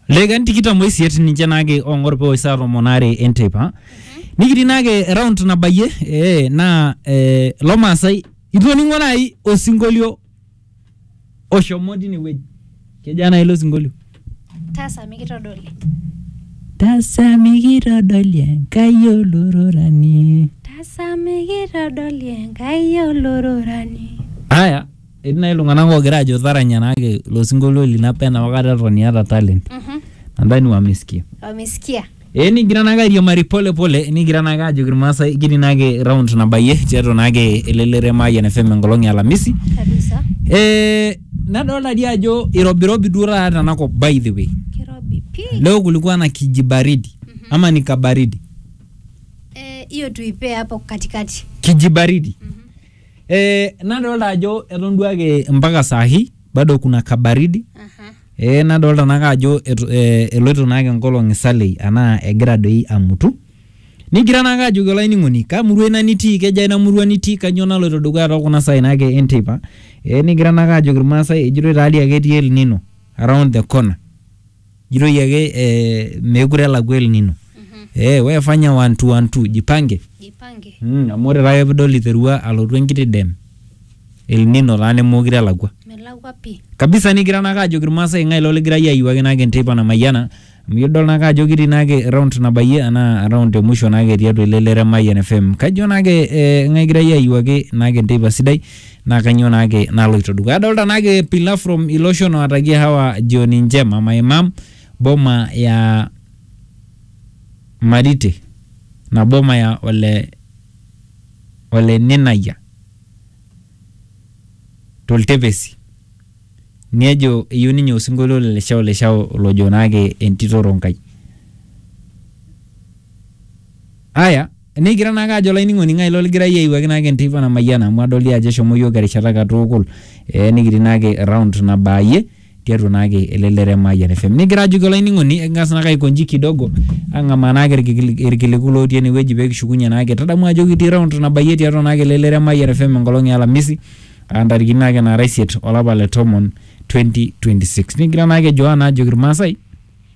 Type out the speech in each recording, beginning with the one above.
Legan tikitam oisiet ninche naake ong'or pee saa tomon aare enteipa. Nikitii naake round nabayie eh, naa eh, lo Maasai itu oning'o naai osinkolio oshomo tine wueji. Kejaa naai ilo sinkolio? taasa mikitodoli Tasa mikitodoli Enkai olororani. taasa mikitodoli enkai olororani Aya, Etii nai iltung'anak oogira aajo taranya naake ilo sinkolio lino apa enopa kata eton iyata talent. Mhm. Nadhani wamesikia. Wamesikia. Ee nikigira naake airiamari pole pole nikigira naake aajoki Irmaasai kitii naake round nabayie tiatua naake elelero e Mayian FM enkolong e Alamisi. Kabisa. Ee nadolta dii ajo irobirobi duo taata tena kop by the way. Kirobi pii. Leo kulikuwa na kijibaridi ama ni kabaridi? Eh, hiyo tuipee hapo katikati. Kijibaridi. Ee nadolta ajo eton duo ake mpaka saa hii bado kuna kabaridi Aha. ee nadolta naake ajo etu- ee, eloito naake nkolong'i salei anaa egira doi amutu nigira naake ajoki olainining'oni kaa murua ina nitii kejaa ina murua nitii kanyoo naloito dukuya too kuna saai naake e nteipa ee nigira naake ajoki ilmaasai ejitoi taa dii ake etii elnino around the corner. jitoi ake eh, meekure elakua El Nino eh, we fanya one two one two jipange jipange mm, amu ore taake pidol iterua alotu enkiti dem El Nino taa nemeekure elakua melakwa pii kabisa nigira naake ajoki irmaasai ng'ae lo ligira iyie ayiwaki naake enteipa namayiana amu idol naake ajo kitii naake round nabayie anaa round emusho naake tiatua ele lere Mayian FM kajo naake eh, ng'ae kigira iyie ayiwaki naake enteipa sidai naa kanyoo naake naloito dukuya. Adolta naake Pilar from Iloshon oatakie Hawa jioni njema, my mom boma ya Marite na boma ya ole ole Ninayia toltepesi. Nejo eyeu ninye osinkolio le leshao leshao lojo naake entito Ronkai. Aya. Nikigira naake ajo olainining'oni ng'ae ilo ligira iyie aiwuaki naake enteipa namayiana amu adol dii ajo eshomo iyiook erishata katukul eh, nikitii naake round nabaayie tiatua naake ele lere Mayian FM. Nikigira ajoki olainining'oni eking'as naake aikonji kidogo ang'amaa naake irkikili- irkiliku lootii enewueji peekishukunye naake. Tadamu ajo kitii round nabayie tiatua naake ele lere Mayian FM enkolong e alamisi aa ntarikini naake naara isiet olapa le tomon 2026. Nikigira naake Joana ajoki irmaasai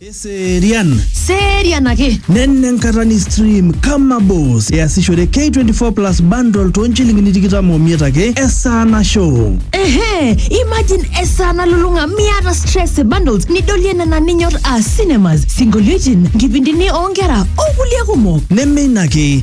Eserian. Serian ake. Nenne enkata ni stream kama boss easishore K24 plus bundle too nchilingini tikitam omiet ake esaa nasho. Ehe, imagine esaa nalulung'a miata stress e bundles nidolie nena ninyor aa cinemas, sinkolioitin, nkipindini oonkera o kulie kumok. Neme ina ake,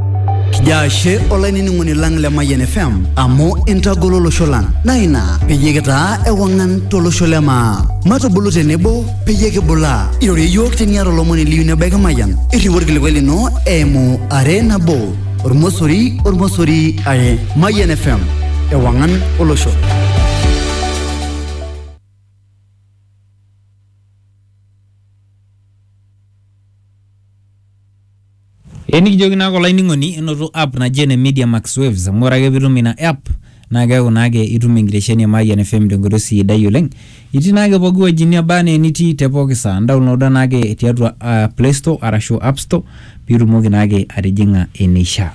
Kijo ashe olainining'oni lang le Mayian FM amu intagolo olosho lang naa ina peyie kitaa ewang'an tolosho le maa. Matubulu tenebo peyie kibulaa. Irorie iyiook teniata olomoni liyieu nebaiki Mayian. Irriu orkilikuai lino eimu are nabo ormosori ormosori are. Mayian FM ewang'an olosho. Ee nikijoki naake olainining'oni enoto app naji ene Media Max Waves amu ore ake piitum ina app naa keeku naake itum enkitesheni e Mayian FM te nkoitoi sidai oleng'. Itii naake pooki wueji neba enaa enitii te pooki saa, indaonloda naake tiatua aa play store arashu app store piitumoki naake atijing'a eneishaa.